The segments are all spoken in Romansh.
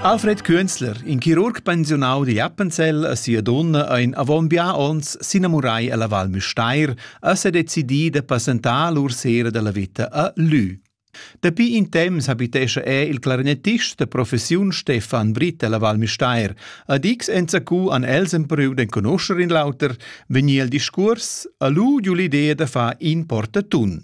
Alfred Künzler, in chirurg pensiunau di Appenzell a sia donna ein avon bia onns s'inamurai ella Val Müstair e se decidi de passentar lur sera della vita a Lü. Dapi in temps habitescha er il clarinettist de professiun Stefan Britt ella Val Müstair. A Dix enzacu an els empruau d'enconoscher in lauter, vegnir il discurs, a lu giu l'idea de far in portatun.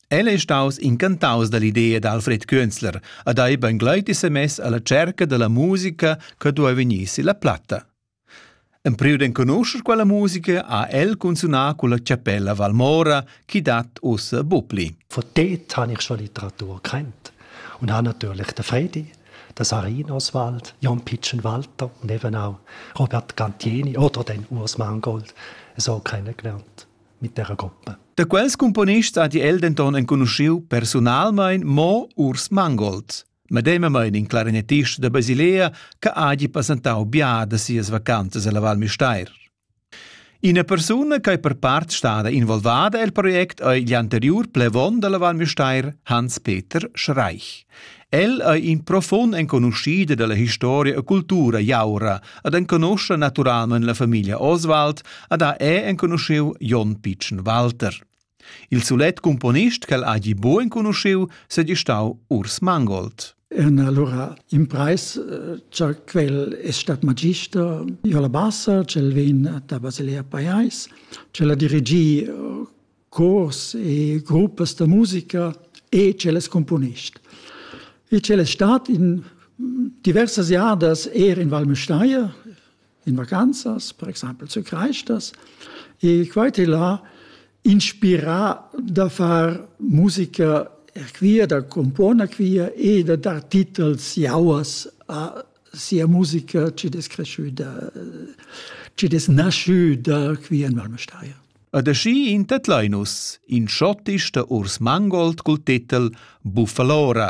El ei staus incantaus dall'idea d'Alfred Künzler ad ei beingleiti semess alla cerca dalla musica che duei vegnir silla platta. Empriu d'enconuscher quella musica ha el cunzunà culla chapella Valmora chi dat ussa Bupli. Von dort habe ich schon Literatur kennt und habe natürlich den Fredi, den Sarin Oswald, Jan Pitschen Walter und eben auch Robert Gantieni oder den Urs Mangold so kennengelernt. mit terra coppa. Da quels cumponists ha el denton enconuschiu personalmein mo Urs Mangold, medemamain in clarinettist da Basilea che hagi passentau bia da sias vacanzas alla Val Müstair. Ina persuna che per part stada involvada el project ei gl'anteriur plevon dalla Val Müstair Hans-Peter Schreich. El ei in profund enconuschider dalla historia e cultura jaura ed enconoscha naturamein la famiglia Oswald ed ha è enconuschiu Jon Pitschen Walter. Il sulet componist ch'el hagi buc enconuschiu sedi stau Urs Mangold. En allora in preis cha quel es stat magister io la bassa, cel vegn da Basilea Paiais, cel ha dirigì cors e gruppas da musica e cellas componist. E c'è stat in diversas jadas er in Val Müstair, in vacanzas, per esempio zu Kreistas, e quite là inspirà da far musica quia, da componer quia e da dar titels jauas a sia musica ci des cresciuta, ci des nasciuta qui in Val Müstair. Ed aschi in tedlain nus in schottisch da urs mangold cul titel Buffalora.